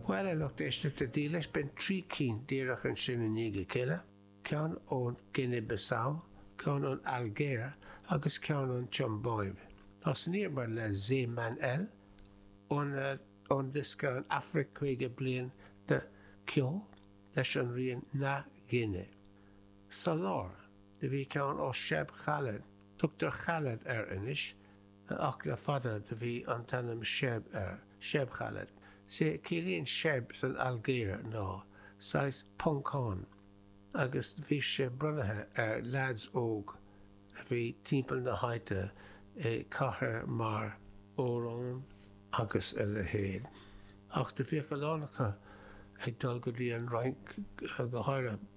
Bhuel, a lucht éisteachta dílis, b'in trí cinn díreach ansin i ndiaidh a chéile, ceann ón Guine Bissau, ceann ón Ailgéir agus ceann ón tSiombáib. Ós an iarmhar le Zé Manel, ón ón diosca An Afraic Caoga Bliain de Cheol, leis an rian Na Guine. Sa lár, do bhí ceann ó Cheb Khaled, tugtar Khaled air anois, Ach le fada do bhí an t-ainm Cheb air, Cheb Khaled. Sea, ciallaíonn Cheb san Ailgéir ná, saghas, Poncán, agus do bhí sé bronnaithe ar leaids óg a bhí timpeall na háite i cathair mar, Oran, agus a leithéid. Ach do bhíodh a lán acu ag dul go dtí an Fhrainc go háirithe.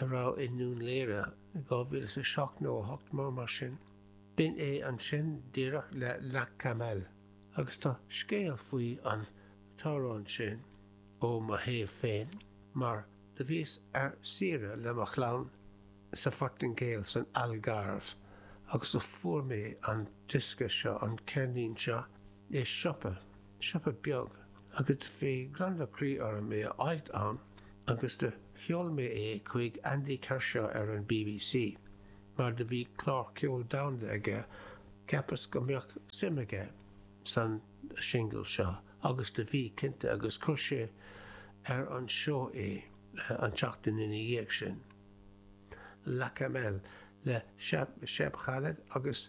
a raibh i nDún Léire, 2007 nó 8 mar mar sin. B'in é ansin díreach le La Camel agus tá scéal faoi an t-amhrán sin ó mo thaobh féin mar do bhíos ar saoire le mo chlann sa Phortaingéil san Algarve agus do fuair mé an diosca seo, an ceirnín seo, i siopa. siopa beag agus do bhí gliondar croí orm é a fháilt ann agus do sheol mé é chuig Andy Kershaw ar an BBC mar do bhí clár ceoil domhanda aige cheapas go mbeadh suim aige san singil seo agus do bhí cinnte agus chuir sé ar an seó é an tseachtain ina dhiaidh sin La Camel le Cheb Khaled agus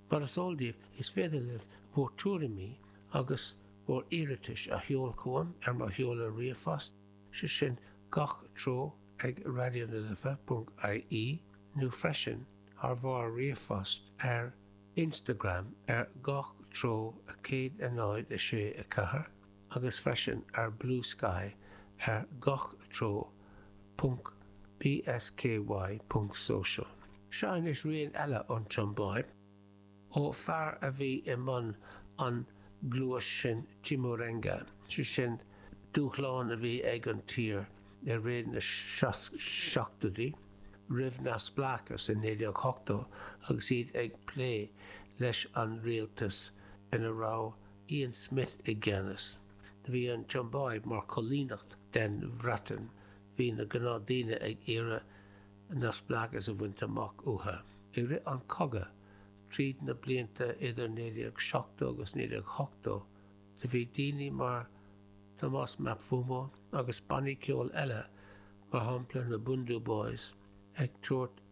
Mar is eol daoibh, is féidir libh bhur tuairimí agus bhur iarratais a sheol chugam ar mo sheoladh ríomhphost, sé sin gach treo ag raidionalife.ie nó freisin thar bharr ríomhphost ar Instagram ar gach treo 106 4. agus freisin ar Blue Sky ar gach treo. bsky.social. Seo anois rian eile ón tSiombáib, ó fear a bhí i mbun an ghluais sin Chimurenga, sé sin dúshlán a bhí ag an tír i rith na seachtóidí, roimh neamhspleáchas i 1980 agus iad ag plé leis an rialtas ina raibh Ian Smith i gceannas. Do bhí an tSiombáib mar choilíneacht den Bhreatain. Bhí na gnáthdaoine ag iarraidh neamhspleáchas a bhaint amach uathu. I rith an cogadh, tríd na blianta idir 1970 agus 1980, do bhí daoine mar Thomas Mapfumo agus bannaí ceoil eile, mar shampla na Bhundu Boys, ag tabhairt,